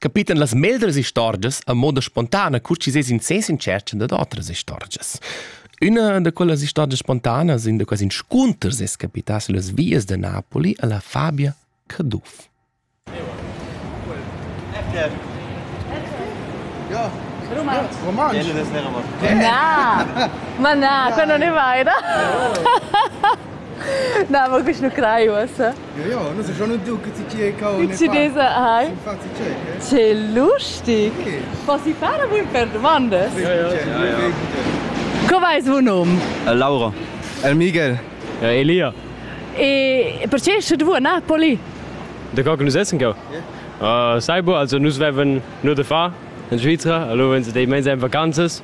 capitan las meglras istorgias a moda spontana, cur chi sez in sens in tschercha dad otras istorgias. Üna da quellas istorgias spontanas in da quasi inscunters es capità sulle vias da Napoli alla Fabia Caduff. Ja. Romanz. Romanz. Na, ma na, to non ne vai, da? Na, mogoče na kraju vas. Ja, non so schon und du che ti ci cavolo ne Dici desa hai? Ci fazzi cieche? Che lustig! Posso fare un per domande? Ja, ja. Co vai suo nome? Laura. El Miguel. Ja, Elia. E perché esce tu a Napoli? Da qua nous essen go. Uh, sai bo, also nus veven nur da fa in Svizzera, allora wenn sie dei mens ein Vacanzas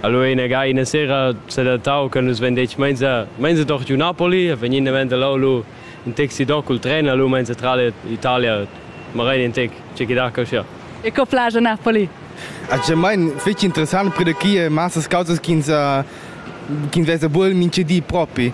Allora ina ga ina sera sedattau che nus vein detg meinsa meinsa doch giu Napoli, vegnin davent lau lu in taxi do cul tren e lu meinsa tral Italia, magari in tec, ce che da coscia. E co plagia Napoli? Ace mein fece interessant per de chi massas causas ch'ins ch'ins vesa bul minchedi propi.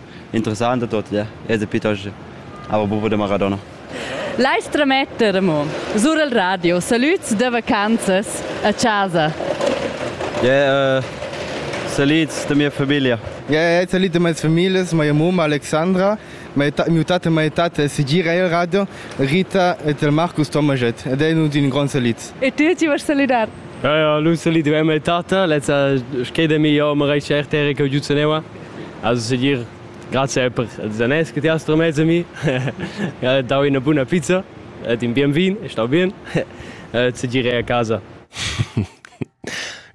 interessant dad ler. E da piuttost aber bufa da Maradona. L'ais trametter mo sur il radio salüds da vacanzas a casa. Yeah, uh, salüds da mia famiglia. Yeah, salut de mes familias, mia mamma Alexandra, mio tat e mia tata sigire il radio, Rita et il Marcus Tomajet ed è un gran salut. E tu ci vuoi saludar? Ja, ja, l'un salut de mia tata, lezza schede mi jo, ma reice er tere che giuzeneva. Also segir grazie per il danès che ti hast tramess a mi. Ho dau ina buna pizza ed in bien vin, è stau bien. Segir è a casa.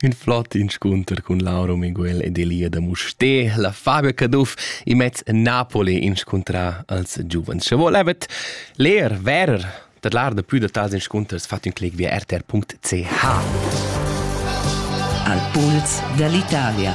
Ün flott inscunter cun Lauro Miguel ed Elia da Mustè. La Fabia Caduff immez Napoli inscuntra als giuvens. Sche vol evet leer, verer, dat lar da pü da tals inscunters fat ün clic via rtr.ch. Al puls dall'Italia.